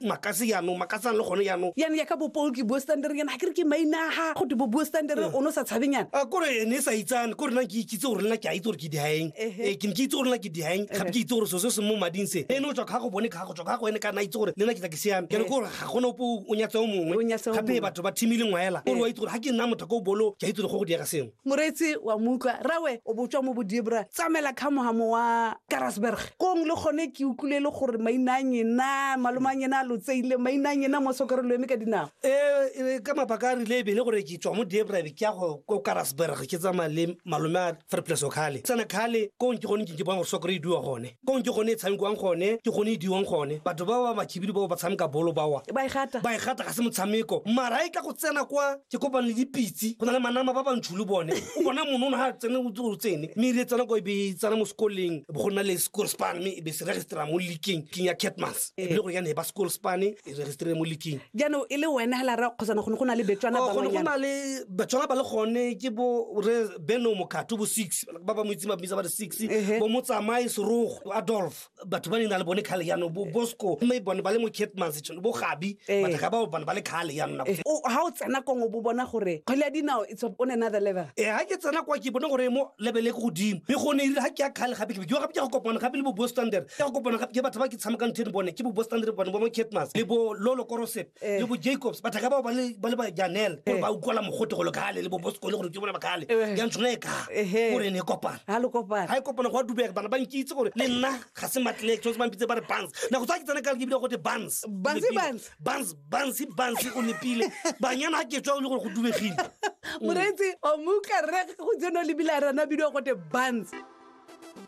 makase yaanong makase ang le gone yaanong yane ya ka bopol ke bue standere yana ga ke re ke mainaga go te bo bue standere o ne o sa tshabeng yana a kore ne sa itsane kore nna ke ikitse gore nna ke a itse gore ke dihaeng Ehe. Eh, ke ne ke itse gore nna ke dihaeng gape ke itse gore so se se mo mading se ene o tswa ka go bone ka go tswa ka go ene ka nna itse gore le nna ke tla ke siame ke ne kore ga gona ope o nyatse o mongwe O nyatse o gape mongwe. batho ba thimile ngwaela kore wa itse gore ga ke nna motho ka o bolo ke a itse gore go go diega sengwe Moreetsi wa mo utlwa, Rawe o botswa mo Bodibra, tsamaela kha mohamo wa Karasberg. Kong le gone ke utlwile le gore maina a nyena, malome a nyena a lotseile, maina a nyena mo sokere lo eme ka dinao. Ee, ka mabaka a rile e bele gore ke tswa mo Diebra be ke ya go ko Karasberg ke tsamaya le malome a Verplesokhale. Tsena khale kong ke gone ke ke bona gore sokere e duwa gone. kong ke gone e tshamekiwang gone ke gone e diwang gone batho ba ba bakhibidu bao ba tshameka bolo bawa ba e gata ba e gata ga se motshameko mara e ka go tsena kwa ke kopane le dipitse go na le manama ba bantšhu le bone o bona monono ga tsene o tse o tsene mme ire tsena kwa e be e tsena mo sekoleng bo go nna le school span mme e be se registrera mo leaking king ya catmas e bile gore ya ne ba school span e registrere mo leaking jaanong e le wena hela ra kgosana gone go na le betswana Oh, gone go na le batswana ba le gone ke bo re beno mokgato bo six ba ba mo itseng ba bitsa ba re six Ehe. bo motsamaye serogo adolf batho ba ne na le bone kgale yanong bo bosco mme bone ba le mo catmans tšhono bo gabi Eh. batho ga bao bone ba le kgale yanona Eh, o- ha o tsena kong o bo bona gore kgwele ya dinao it's on another level e ga ke tsena kwa ke bone gore mo lebele ko godimo mme gone erile ga ke ya kgale gape ke be ke yo gape ke ya go kopana gape le bo bostander ke ya go kopana gape ke batho ba ke tshamekang theno bone ke bo bostander bone bo mo catmas le bo lolo korosep Eh. le bo jacobs bathaka bao ba le ba le ba janele gore Eh. ba utlwala mogote go le kale le bo bosekole gore ke bona bakale Eh. ya ntshwana e ka Ehe. gore ne e kopana ga le kopana ga e kopana go a dubega bana ba nkitse gore le nna ga se matlelek tshwanetse ba mpitse ba re bans na go tsa ke tsena ka ke bile gote bans Bansi, Bans. bans bans bans o nepile banyana ga ke tswa o le gore go dubegile moreetsi o mo utlwa rre go tseno lebile a rana bidio gote bans